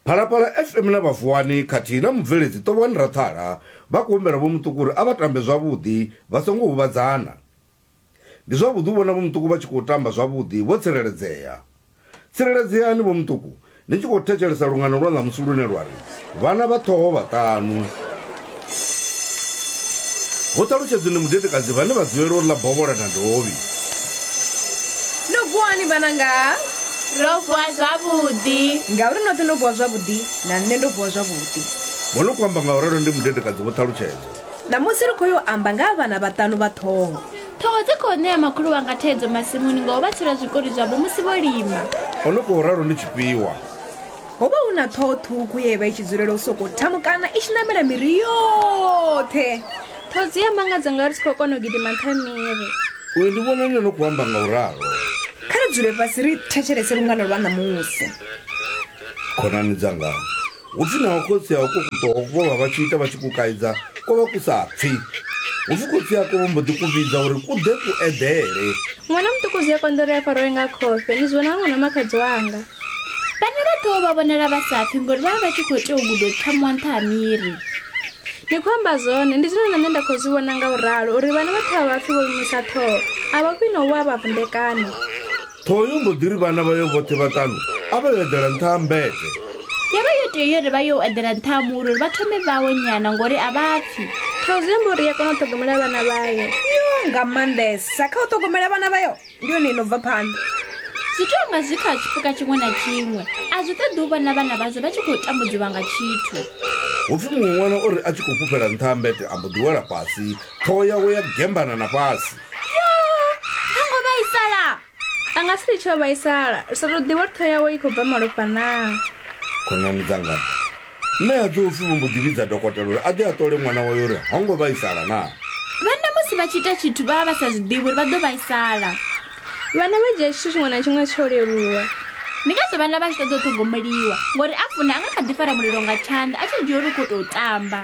phalaphala fm na vhavuwani khathihi na mubveledzi tovhani rathala vha khou humbela vho muṱuku uri a vha tambe zwavhuḓi vha songo huvhadzana ndi zwavhuḓi u vhona vho muṱuku vha tshi khou tamba zwavhuḓi vho tsireledzea tsireledzeani vho muṱuku ni tshi khou thetshelesa lungano lwa ṋamusi lune lwa ri vhana vha ṱhoho vhaṱanu Ho ṱalutshedzwa ndi mudedekadzi vhane vha dzulela u ḽa bovhola na dovhi. No vuwani vhananga. Ro vuwa zwavhuḓi. Ngauri noṱhe no vuwa zwavhuḓi, na nṋe ndo vuwa zwavhuḓi. Vho no khou amba nga u ralo ndi mudedekadzi vho ṱalutshedzwa. Ṋamusi ri khou yo amba nga ha vhana vhaṱanu vha ṱhoho. Ṱhoho dzi khou ṋea makhulu wanga thaidzo masimuni nga u vha tsela zwikoli zwavho musi vho lima. O no khou ralo ndi Tshifhiwa. ho vha hu na ṱhoho ṱhukhu ye vha i tshi dzulela u sokou thamukana i tshi namela miri yoṱhe ṱhoho dzi a mangadza nga ri si khou kona u gidima nṱha miri uyo ndi vhona nne no khou amba nga u ralo kha ri dzule fhasi ri thetshelese lungano lwa ṋamusi khonani dzanga hupfi naho khotsi a uko kuṱoho vho vha vha tshi ita vha tshi ku kaidza ko vha ku sa pfi hupfi khotsi ako vho mbo ḓi ku vhidza uri ku ḓe ku eḓele ṅwana muṱuku zwi a konḓa uri a faroe nga khofhe ni zwi vhona nga ṅwana makhadzi wanga Vhana vha tea u vha vhonela vha sa pfi ngori vha vha vha tshi khou tea u guda u pfa muwa nṱha ha miri. Ni khou amba zwone, ndi zwine na nṋe nda khou zwi vhona nga u ralo uri vhana vha ṱhavha vhapfi vho imusa ṱhoho a vha khwine u wa vha vunḓekana. Ṱhoho yo mbo ḓi ri vhana vhayo vhoṱhe vhaṱanu a vha yo eḓela nṱha ha mmbete. Yo vha yo tea uri vha yo u eḓela nṱha ha muri uri vha thome vhawo nyana ngori a vha pfi. Ṱhoho zwi amba uri i a kona u ṱhogomela vhana vhayo. Yoo, nga maanḓesa kha u ṱhogomela vhana vhayo. ndi yone i no bva phanḓa zwi tea nga zwi kha tshipuka tshiṅwe na tshiṅwe a zwi ṱoḓi u vhona vhana vhazwo vha tshi khou tambudziwa nga tshithu hupfi muṅwe ṅwana o ri a tshi khou fhufhela nṱha ha mbete a mbo ḓi wela fhasi ṱhoho yawe ya gembana na fhasi ha ngo vhaisala a nga si litshe o vhaisala ri sa tou ḓivha uri ṱhoho yawe i khou bva malofha naa khonani dzanga Mme a Jofi vho mbo ḓi vhidza dokotela uri a ḓe a ṱole ṅwana wawe uri ho ngo vhaisala naa. Vhanna musi vha tshi ita tshithu vha vha vha sa zwi ḓivhi uri vha ḓo vhaisala. Vhanna vha dzhia tshithu tshiṅwe na tshiṅwe tsho leluwa. Ndi ngazwo vhanna vha tshi ṱoḓa u ṱhogomeliwa ngori a funa a nga kha ḓi fara mulilo nga tshanḓa a tshi dzhia uri u khou tou tamba.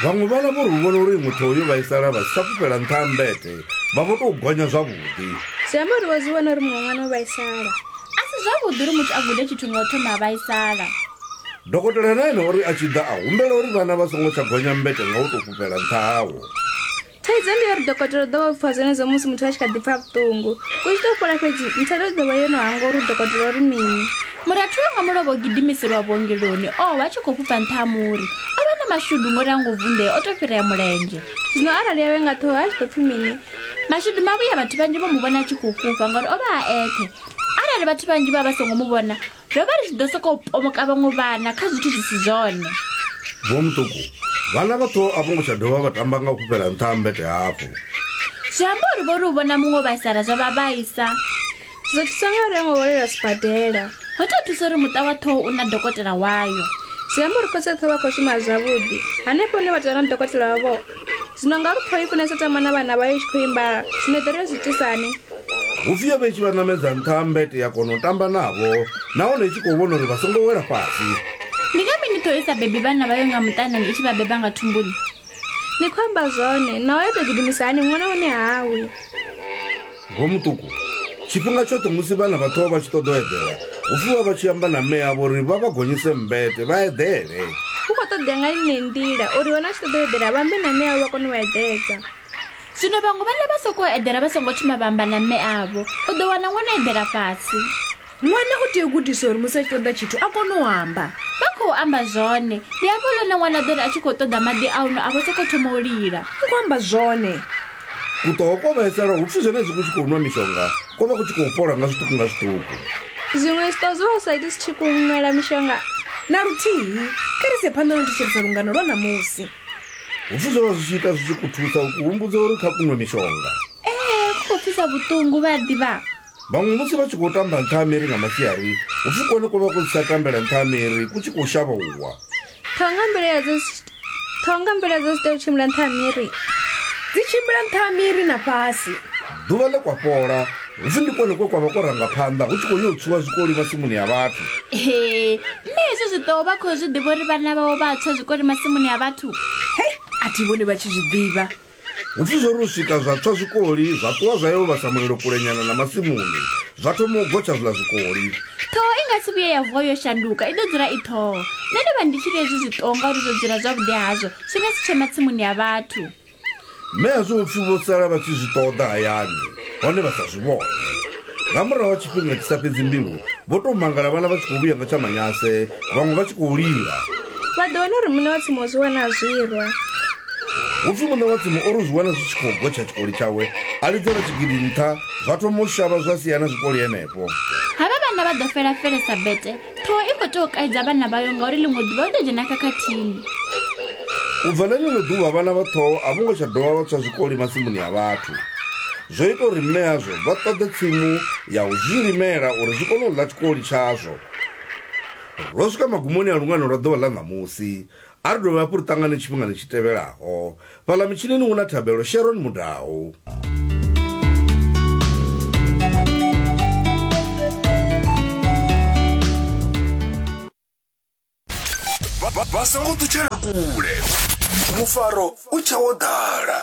Vhaṅwe vhana vho ri u vhona uri muthu hoyo vhaisala vha si tsha fhufhela nṱha ha mmbete vha vho tou gonya zwavhuḓi. Zwi amba uri vho zwi vhona uri muṅwe ṅwana o vhaisala. A si zwavhuḓi uri muthu a gude tshithu nga u thoma a vhaisala. Dokotela na ene o ri a tshi ḓa a humbela uri vhana vha songo tsha gonya mbete nga u tou fhufhela nṱha hawo. Thaidzo ndi ya uri dokotela u ḓo vha o pfha zwenezwo musi muthu a tshi kha ḓi pfha vhuṱungu. U tshi tou fhola fhedzi nthelo i ḓo vha yo no hangwa uri dokotela o ri mini. Murathu wanga mulovha o gidimiselwa vhuongeloni o vha a tshi khou fhufha nṱha ha muri. O vha na mashudu ngori ha ngo vunḓea, o tou fhirea mulenzhe. Zwino arali a we nga ṱhoho a tshi ḓo pfi mini? Mashudu mavhuya vhathu vhanzhi vho mu vhona a tshi khou fhufha ngori o vha a eṱhe. Arali vhathu vhanzhi vha vha songo mu vhona, ro vha ri tshi ḓo sokou pomoka vhaṅwe vhana kha zwithu zwi si zwone vho muṱuku vhana vhaṱo a vho ngo tsha dovha vha tamba nga u fhufhela nṱha ha mbete hafho zwi amba uri vho ri u vhona muṅwe vhaisala zwa vha vhaisa zwo thusa nga uri ngo hwalela sibadela ho tou thusa uri muṱa wa ṱhoho u na dokotela wayo zwi amba uri khotshoṱhe vha khou shuma zwavhuḓi hanefho hune vha tou na dokotela wavho Zwino nga lu pfoi funesa tama na vhana vhayo tshi khou imba zwino ḓo ri yo zwi tisani. Vhupfio vhe tshi vha ṋamedza nṱha ha mbete ya kona u tamba navho nahone i tshi khou vhona uri vha songo wela fhasi. Ndi nga mini ṱhoho i sa bebi vhana vhayo nga muṱanani i tshi vha beba nga thumbuni? Ni khou amba zwone, naho ya tou gidimisa hani ṅwana hune hawi. Vho Muṱuku, Tshifhinga tshoṱhe musi vhana vha ṱuwa vha tshi ṱoḓa u eḓela, hu pfi vha vha tshi amba na mme avho uri vha vha gonyise mmbete vha eḓele. Hu khou ṱoḓea nga ine nḓila uri vhana vha tshi ṱoḓa u eḓela vha ambe na mme avho vha kone u vha eḓedza? Zwino vhaṅwe vhana vha sokou eḓela vha songo thoma vha amba na mme avho. U ḓo wana ṅwana o eḓela fhasi. Ṅwana u tea u gudiswa uri musi a tshi ṱoḓa tshithu a kone u amba. Vha khou amba zwone. Ndi hafho lune ṅwana a ḓo ri a tshi khou ṱoḓa maḓi a u nwa a vho sokou thoma u lila. Ni khou amba zwone. Kuṱoho kwo vhaisala hu pfi zwenezwi ku tshi khou nwa mishonga ko vha ku tshi khou fhola nga zwiṱuku nga zwiṱuku. Zwiṅwe zwiṱoho zwo vha zwi sa iti zwi tshi khou nwela mishonga na luthihi. Kha ri ise phanḓa na u thetshelesa lungano lwa ṋamusi. Hu pfi zwo vha zwi tshi ita zwi tshi ku thusa u ku humbudza uri kha ku nwe mishonga. Ee, ku khou pfisa vhuṱungu, vha a ḓivha. Vhaṅwe musi vha tshi khou tamba nṱha ha miri nga masiari, hu pfi kone ko vha ku si tsha tambela nṱha ha miri, ku tshi khou shavha u wa. Ṱhoho nga mbilaelo dza zwi- ṱhoho nga mbilaelo dza zwi tea u tshimbila nṱha ha miri dzi tshimbila nṱha ha miri na fhasi Ḓuvha ḽe kwa fhola, hu pfi ndi kone kwe kwa vha ko ranga phanḓa hu tshi khou yo tswiwa zwikoli masimuni ya vhathu. Ee, mme hezwo zwi ḓo vha khou zwi ḓivha uri vhana vhawe vha tswa zwikoli masimuni a vhathu hei a thi vhoni vha tshi zwi ḓivha Hu pfi zwo ri u swika zwa tswa zwikoli, zwa ṱuwa zwa yo vhasa mulilo kulenyana na masimuni, zwa thoma u gotsha zwiḽa zwikoli. Ṱhoho i nga si vhuye ya vuwa yo shanduka, i ḓo dzula i ṱhoho. Nṋe ndi vha ndi tshi ri hezwi zwi ṱoho ngauri zwo dzula zwavhuḓi hazwo zwi nga si tshe matsimuni ya vhathu. Mme a zwi ofhi vho sala vha tshi zwi ṱoḓa hayani hone vha sa zwi vhone. Nga murahu ha tshifhinga tshi sa fhedzi mbilu, vho tou mangala vhala vha tshi khou vhuya nga tsha Manase, vhaṅwe vha tshi khou lila. Vha ḓo wana uri muṋe wa tsimu o zwi wana a zwirwa. Hu pfi muṋe wa tsimu o ri u zwi wana zwi tshi khou gotsha tshikoli tshawe, a lidzela tshigidi nṱha, zwa thoma u shavha zwa sia na zwikoli henefho. Havha vhana vha ḓo fela-fele sa bete, ṱhoho i khou tea u kaidza vhana vhayo ngauri ḽiṅwe ḓuvha u ḓo dzhena khakhathini u bva na ḽiṅwe ḓuvha vhana vha ṱhoho a vho ngo tsha dovha vha tswa zwikoli masimuni a vhathu zwo ita uri mme azwo vha ṱoḓe tsimu ya u zwi limela uri zwi kone u ḽa tshikoli tshazwo ro swika magumoni a lungano lwa ḓuvha ḽa ṋamusi A ri dovhe hafhu ri ṱangane tshifhingani tshi tevhelaho. Fhaḽa mitshinini hu na thabelo Sharon Mudau. vha songo ṱutshela kule mufaro u tshawo ḓala